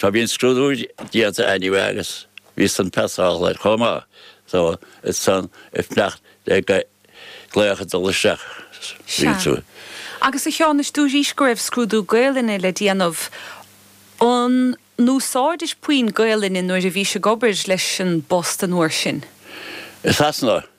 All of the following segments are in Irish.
Tá bhí an scrúdú déanta anyway agus bhí san passálta chomh maith so bhíos ansan ag fanacht le glaoch ag dul isteach níl tú. Sea. Agus a Sheáin, dúraís go raibh scrúdú Gaoluinne le déanamh. An n-úsáidis puinn Gaoluinne nuair a bhís ag obair leis an bPost an uair sin? I Sasana.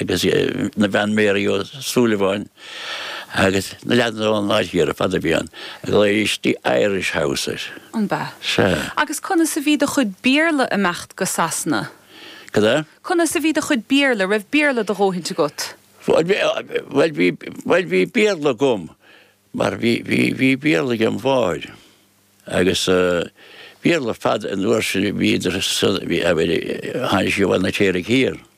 agus na bean Mary Ó Súilleabháin agus na leaideanna ón áit thiar ar fad a bhí ann ar lóistín Irish House abair. An b'ea? Sea. Agus conas a bhí do chuid Béarla ag imeacht go Sasana? Cad é? Conas a bhí do chuid Bearla? Raibh Béarla do dhóthaint agat? Bhuel, bhí, bhuel, bhí Béarla agam mar bhí, bhí, bhí Béarla ag mo mháthair agus Béarla ar fad an uair sin a bhí idir, thainisigh Bhaile an Fheirtéaraigh thiar.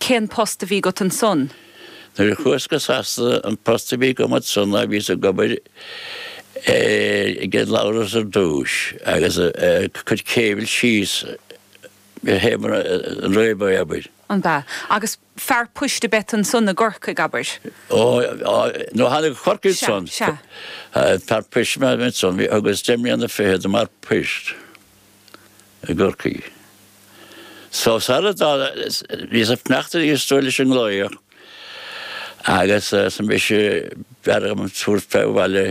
Cén post a bhí agat ansan? Nuair a chuas go Sasana an post a bhí agam ansan ná bhíos ag obair i gCead Labhras ar dtúis agus ag cur cable síos go Heamar an Réabadh abair. An b'ea? Agus fear poist a b'ea tú ansan i gCorcaigh abair? Ó no thána go Corcaigh ansan. Sea, sea. Fear poist a b'ea mé ansan, bhí thugas deich mbliana fichead i m'fhear poist. i gCorcaigh. So sar a bhíos ag fanacht arís dúirt leis an nglaoch agus arsa mise b'fhearr dhom tabhairt fé abhaile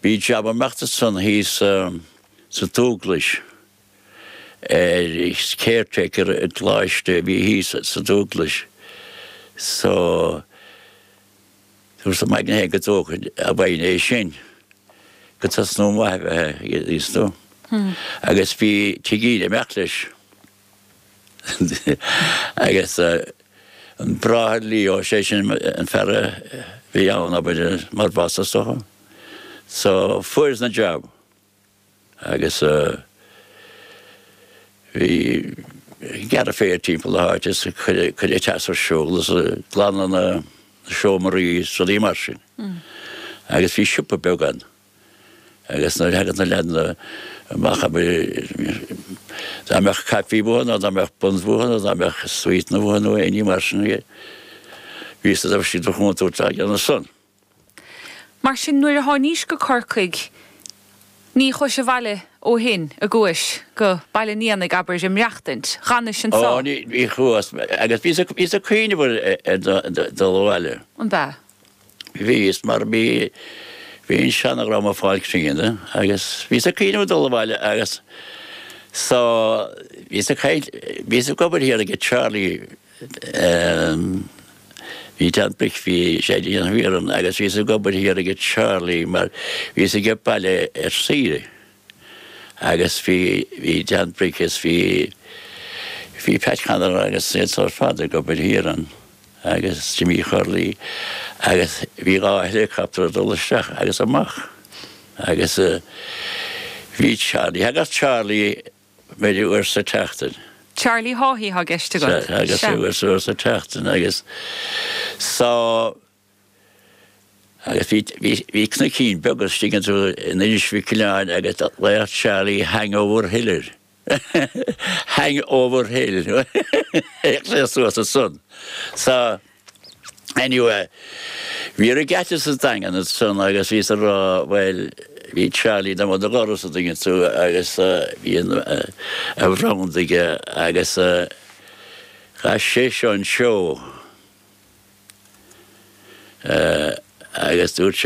bhí jab ag imeacht ansan thíos sa Dúglais ar caretaker i gColáiste a bhí thíos sa Dúglais so Dúrt im aigne féin go dtógfainn a bhfoighne é sin gur tosnú maith a bheith aige thíos nó agus bhí tigín ag imeacht leis agus an Bráthair Leo, sé sin an fear a bhí ann abair mar bhoss is dócha. So fuaireas an jab. agus bhíos ag gearradh féir timpeall na háite is cur an teas ar siúl is glanadh na seomraí is rudaí mar sin. Agus bhí siopa beag ann agus nuair a thagadh na leaideanna amach dá mbeadh caifí uathu nó dá mbeadh buns uathu nó dá mbeadh sweetanna uathu nó éinní mar sin bhíodh siad ag déanamh ansan. Mar sin nuair a tháinís go Corcaigh ní chuais abhaile ó shin ní chuais go Baile an Éanaigh abair a' maireachtaint, dh'fhanais anso. Ó, ní chuas, agus bhíos a' cuimhneamh ar dhul abhaile. An b'ea? Bhíos, mar bhí, bhí an seanadhream a' fáil críonna agus bhíos a' cuimhneamh a dhul abhaile agus so bhíos a' caint, bhíos a' obair thiar aige Charlie, Em, bhí Dan Bric, bhí sé ag déanamh iarann agus bhíos ag obair thiar ag Charlie mar bhíos age baile ar saoire agus bhí bhí Dan Bric is bhí bhí Pat Connor agus iad san ar fad ag obair thiar ann agus Jimmy Charlie agus bhí dhá helicopter ag dul isteach agus amach agus eh, bhí Charlie thagadh Charlie b'fhéidir uair sa tseachtain. Charlie Haughey atá i gceist agat? Sea, agus Sea. uair sa uair sa tseachtain agus so agus bhí bhí bhí cnoicín beag istigh an dtuigeann tú in Inis Mhic Aoibhleáin agus ghlaodh Charlie Hangover Hill air Hangover Hill suas ansan. So. Anyway, bhí an regatta sa Daingean ansan agus bhíos ag rá bhuel bhí Charlie do mo do dhoras an dtuigeann tú agus bhí an a bhranda aige agus chaith sé seo an seó agus dúirt sé